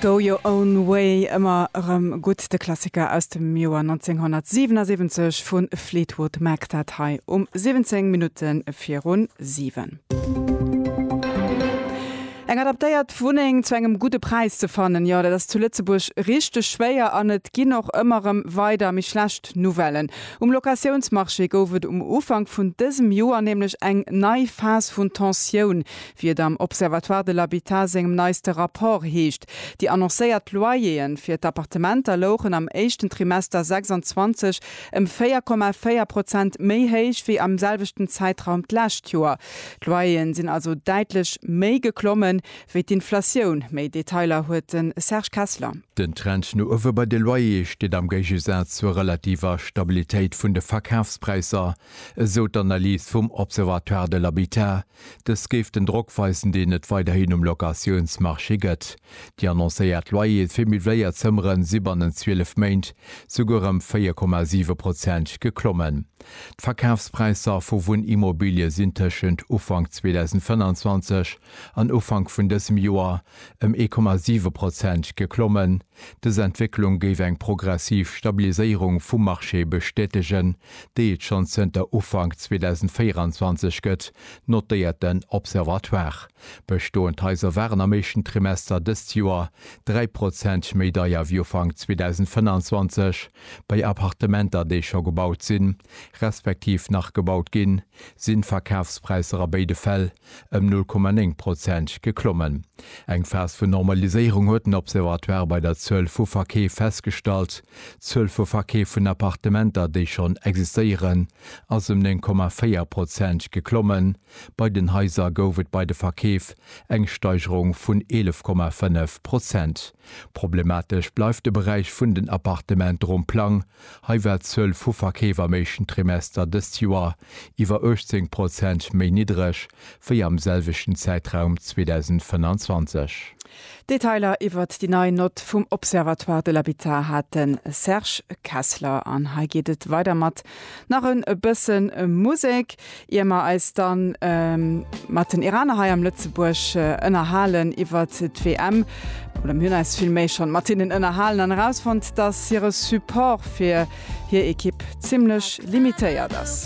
Go Your Own Way, ëmmer erëm gutt, de Klassiker aus dem Joer 1977 vu Fleetwood Mac, dat hei um 17 Minutte viru 7. Eng adaptéiert Wunneng zu engem gudde Präis ze fannen, jo, dat ass zu Lëtzebuerg richteg schwéier an et ginn och ëmmer erëm weider méi schlecht Nouvellen. Um Locatiounsmarché gouf et um Ufank vun dësem Joer nämlech eng nei Phas vun Tensioun, Wéi et am Observatoire de l'habitat sengem neiste Rapport heescht, déi annoncéiert Loyer'e fir d'Appartementer louchen am éischten Trimester 26 ëm 4,4 Prozent méi héich wéi am selwechten Zäitraum d'lescht Joer. D'Loyer'en sinn also däitlech méi geklommen wéi d'Inflatioun. Méi Detailer huet de Serge Kessler. Den Trend no uewe bei de Loyer'e steet am Géigesaz zur relativer Stabilitéit vun de Verkafspräisser, esou d'Analys vum Observatoire de l'habitat, Dës géif den Drock weisen, deen et weiderhin um Locatiounsmarché gëtt. Déi annoncéiert Loyere fir Miwwléier Zëmmere si bannent 12 Méint souguer ëm 4,7 Prozent geklommen. D'Verkafspräisser vu Wunnimmobilie sinn tëschent Ufank 2025 an Ufank vun dësem Joer ëm 1,7 Prozent geklommen. Dës Entwécklung géif eng progressiv Stabiliséierung vum Marché bestätegen, déi et schonn zënter Ufank 2024 gëtt, notéiert den Observatoire. Bestoend Haiser waren am éischten Trimester dëst Joer 3 Prozent méi deier wéi Ufank 2025. Bei Appartementer, déi scho gebaut sinn, respektiv nach gebaut ginn, sinn d'Verkafspräisser a béide Fäll ëm 0,9 Prozent geklommen. Eng Phas vun Normaliséierung huet den Observatoire bei der Zuel vu Verkeef festgestallt. D'Zuel vu Verkeef vun Appartementer, déi schonn existéieren, ass ëm 9,4 Prozent geklommen. Bei den Haiser gouf et bei de Verkeef eng Steigerung vun 11,5 Prozent. Problematesch bleift de Beräich vun den Appartement Romplang Hei war d'Zuel vu Verkeef am éischten Trimester dëst Joer iwwer 18 Prozent méi niddereg wéi am selwechten Zäitraum 2025. Detailer iwwert déi nei Nott vum Observatoire de l'habitat hat de Serge Kessler. An hei geet et weider mat nach e bësse Musek. Ier mer eis dann mat den Iraner hei am Lëtzebuerg ënnerhalen iwwert d'WM, oder mir hunn eis villméi schonn mat hinnen ënnerhalen an erausfonnt, dass hire Support fir hir Ekipp zimmlech limitéiert ass.